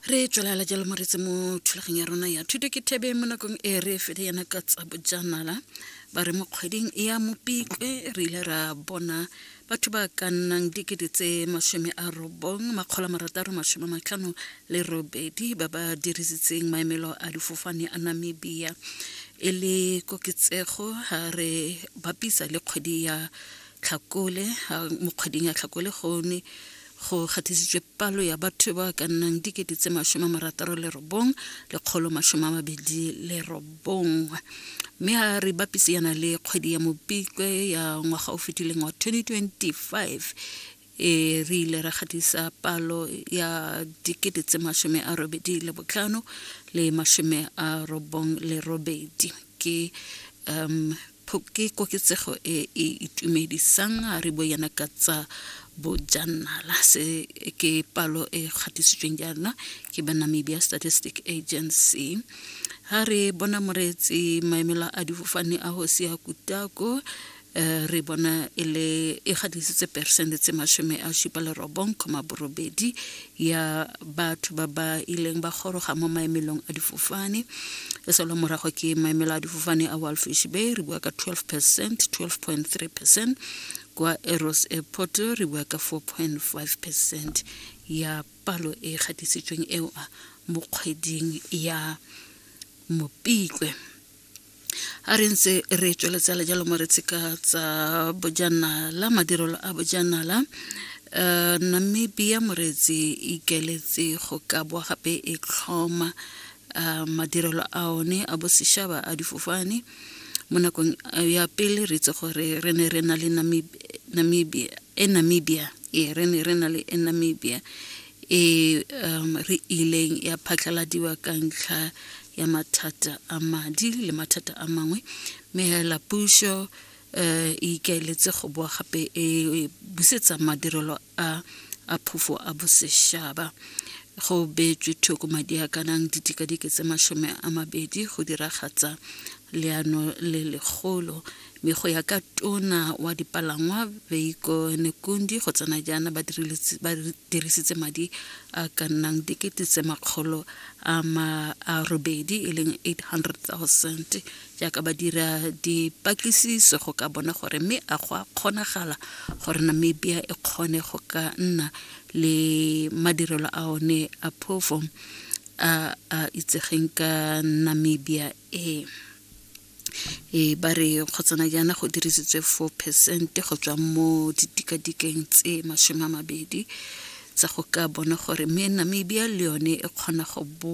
re tswelela jalo moretse mo thulageng ya rona ya thuto ke thebe mo nakong e re fele yana ka tsa bojanala ba re mo kgweding e ya mopikwe re ile ra bona batho ba ka nnang dikete tse masome a robong makgolo marataro masome matlhano le robedi ba ba dirisitseng maemelo a difofane a namibia e le koketsego ga re bapisa le kgwedi ya tlhakole mo kgweding ya tlhakole gone go kgathisitswe palo ya batho ba ka nnang dikete tse masome a marataro le robong lekgolo masome a mabedi le robong mme a re bapise yana le kgwedi ya mopikwe ya ngwaga o fetileng wa 2025 e re ile ra gatisa palo ya dikete tse masome a robedi le botlhano le masome a robong le robedi ke um Ke koketsego e e itumedisang a re boyana ka tsa bojanala se ke palo e kgatisitsweng jaana ke ba namibia statistic agency ha re bona moreetsi maemela a difofane a go sia kutako eh, re bona e le e gadisitse peresente tse masome a supa le robong kgoma borobedi ya batho ba ba ileng ba goroga mo maemelong a difofane e solo morago ke maemelo a difofane a walfish bay re bua ka 12 percent 12.3 percent kwa eros airport re bua ka 4.5 percent ya palo e gatisitsweng eo mo kgweding ya mopikwe a re ntse re tsweletsa le jalo mo re tsheka tsa bojanala madirelo a bojanala um namibia moreetsi ikeletse go ka boa gape e tlhoma um madirelo a one a bosešaba a difofane mo nakong ya pele re itse gore re ne re na le namibia e namibia ee re ne re na le e namibia e um, re ileng ya phatlaladiwa ka ntlha ya mathata a madi le mathata a mangwe mme hela puso um e ikaeletse go boa gape e busetsa madirelo a a phofo a bosešaba go beetswe thoko madi a kanang ditikadike tse masome a mabedi go diragatsa leano le legolo mme go ya ka tona wa dipalangwa veiko nekundi go tsena jaana ba dirisitse madi a ka nnang dikete tse makgolo a robedi e leng 800000 jaaka ba dira dipatlisiso go ka bona gore mme a go a kgonagala gore namibia e kgone go ka nna le madirelo a one a phofo a a itsegeng ka namibia e e ba re kgotsana jaana go dirisitswe 4 percent go tswa mo ditikadikeng tse masome a mabedi tsa go ka bona gore me namibia le yone e kgona go bo